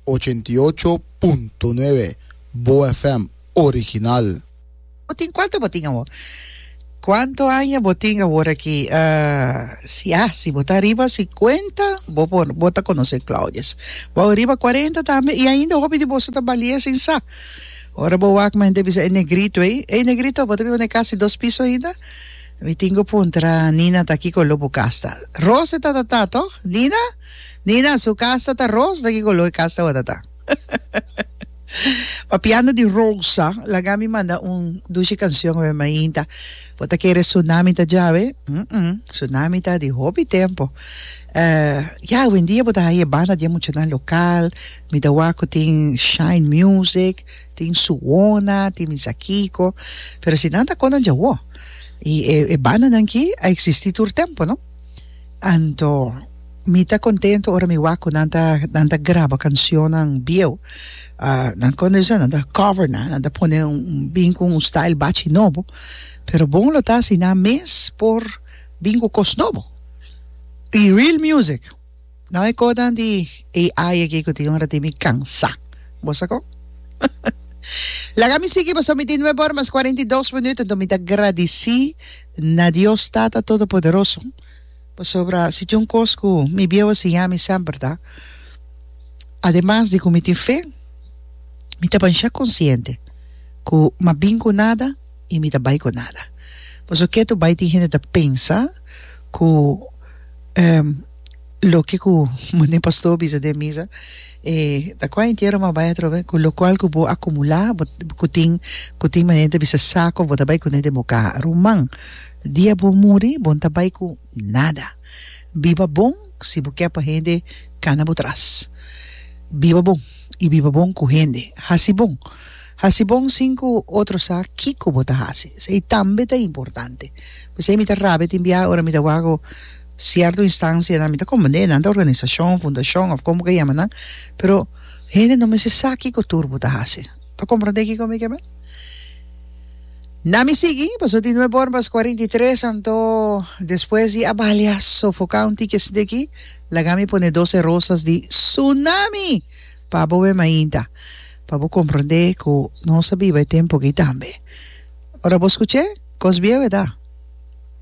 ochenta i ocho punto nuebe Boa FM original. Bo tin cuanto bo tin awor. Cuanto aña bo tin awor aki si a si bo ta ariba cincuenta bo por bo ta conoce Claudius bo ariba cuarenta tambe y ainda hopi di boso ta balia sin sa ora bo wak mi henter bisa e negrito ey ey negrito bo ta biba ne cas di dos piso ainda mi tin cu puntra Nina ta aki cu lo bu cas ta Rose ta ta ta toch Nina. Nina, su cas ta ta rosa ta ki color e cas tabata ta? Papiando di rosa laga mi manda un dushi cancion awe mainta bo ta kere tsunami ta djawe umm tsunami ta di hopi tempo eh ya awendia bo ta haya e banda di e muchanan local mi ta wak cu tin shine music tin suona tin misa kico pero si nan ta con nan dja woh y e bandanan ki a existi tur tempo no. Anto mi ta contento ora mi wak cu nan ta, nan ta graba cancionnan bieuw. nan con esnan, nan ta cover nan, nan ta pone bin cu un style bachi nobo, pero bon lo ta si nan mes por bin cu cos nobo y real music. No e codan di AI aki cu tin ora tin mi cansa. Bo sa con? Laga mi sigui pasobra mi tin nuebe ora mas cuarenta y dos minuut, enton mi ta gradici na Dios Tata Todopoderoso pasobra si tin un cos cu mi bieu a siña mi semper ta ademas di cu mi tin fe, mi ta ban sha conciente cu m'a bin cu nada y mi ta bay cu nada. Pasobra ke tu bay tin hende ta pensa cu. Loke ku mane pastor bisa den misa e ta kua entiero m'a bai atrobe ku lokual ku bo a kumulá bo ku tin ku tin manera ta bisa sako bo ta bai kuné den bo kaha ruman dia bo muri bo ta bai ku nada biba bon si bo ke pa hende kana bo tras biba bon i biba bon ku hende hasi bon hasi bon sin ku otro sa kiko bo ta hasi esei tambe ta importante p'esei mi ta rabia tin biaha ora mi ta wak ku. Sierto instansianan mi ta komprendé nan ta organisashon, fundashon òf komo ku e yama nan, pero hende no mester sa kiko tur bo ta hasi. Ta komprendé kiko mi ke bai? Na mi sigui, pasobra di no e bòrn pas kuarenta i tres, anto despues di a balia sofoká un tiki asinti aki, laga mi pone Doce Rosas di Sunami pa bo e mainta, pa bo komprendé ku nos a biba e tempu aki tambe. Ora bo skuch'é, kos bieu e ta.